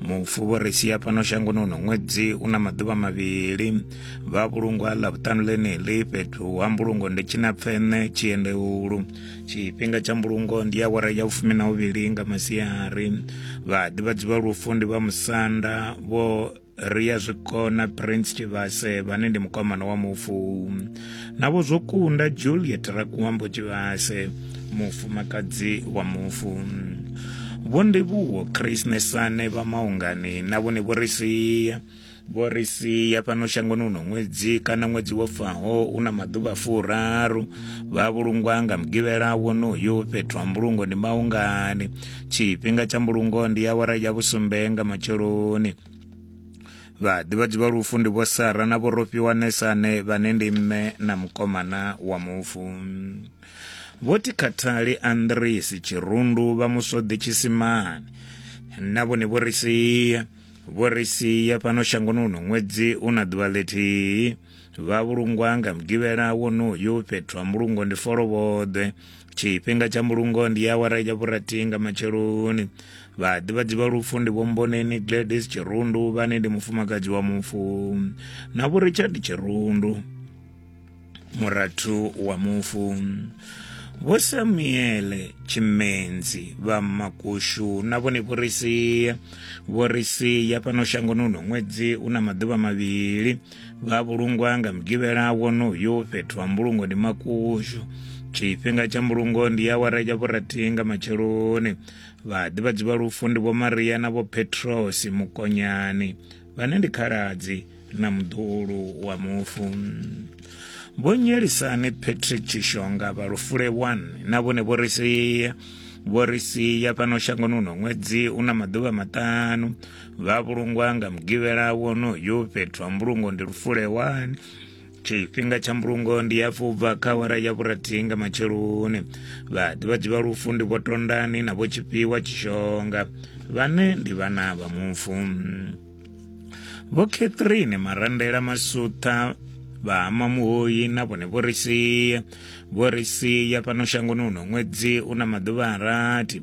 mufu vho ri sia fhano shangoni uno ṅwedzi u na maḓuvha mavhili vha vhulungwa ḽa vhuṱanu ḽeneḽi fhethu ha mbulungo ndi tshina pfene tshiendeulu tshifhinga tsha mbulungo ndi ya wara ya vhufumi na vhuvhili nga masiari vha ḓivhadzi vha lufu ndi vha musanda vho ri ya zwikona prince tshivhase vhane ndi mukomana wa mufu navho zwo kunda juliet rakuambo tshivhase mufumakadzi wa mufu vho ndivhuwo chris nesane vha maungani na vhone vho ri sia vho ri sia fhano shangoni uno ṅwedzi kana ṅwedzi wo faho u na maḓuvha furaru vha vhulungwa nga mugivhela wonoyo fhethu ha mbulungo ndi maungani tshifhinga tsha mbulungo ndi awara ya vhusumbe nga matsheloni Vhaḓivhadzi vha lufu ndi vho Sara na vho Rofhiwanesa ane vhane ndi mme na mukomana wa mufu. Vho Tikhathali Andrisi Tshirundu vha Musodi Tshisimani na vhone vho ri sia vho ri sia fhano shangoni uno ṅwedzi u na ḓuvha ḽithihi. vha vhulungwa nga mugivhela wonoyu fhethu ha mbulungo ndi folovhoḓwe tshifhinga tsha mbulungo ndi ya awara ya vhurathi nga matsheloni vhaḓivhadzi vha lufu ndi vhomboneni gladys tshirundu vhane ndi mufumakadzi wa mufu na vho richard tshirundu murathu wa mufu vho samuele tshimenzi vha makushu na vhone vhorisia vhorisia fhano shangoni uno ṅwedzi una maḓuvha mavhili vha vhulungwa nga mugivhela wonoyu fhethu ha mbulungo ndi makushu tshifhinga tsha mbulungo ndi awara ya vhurathi nga matsheloni vhaḓivhadzi vha lufu ndi vho maria na vho petrosi mukonyani vhane ndi khaladzi na muḓulu wa mufu vho nyelisani patrick tshishonga vha lufule 1 na vhone vho ri sia vho ri sia fhano shangoni uno ṅwedzi una maḓuvha maṱanu vha vhulungwa nga mugivhela wonoyu fhethu ha mbulungo ndi lufule 1 tshifhinga tsha mbulungo ndi ya fubva kha wara ya vhurathi nga matsheloni vhaḓivhadzi vha lufu ndi vho tondani na vho tshifhiwa tshishonga vhane ndi vhana vha mufu vho catherine marandela masutha vha mamuhoyi na vhone vho ri sia vho ri sia fhano shangoni uno ṅwedzi u na maḓuvha a rathi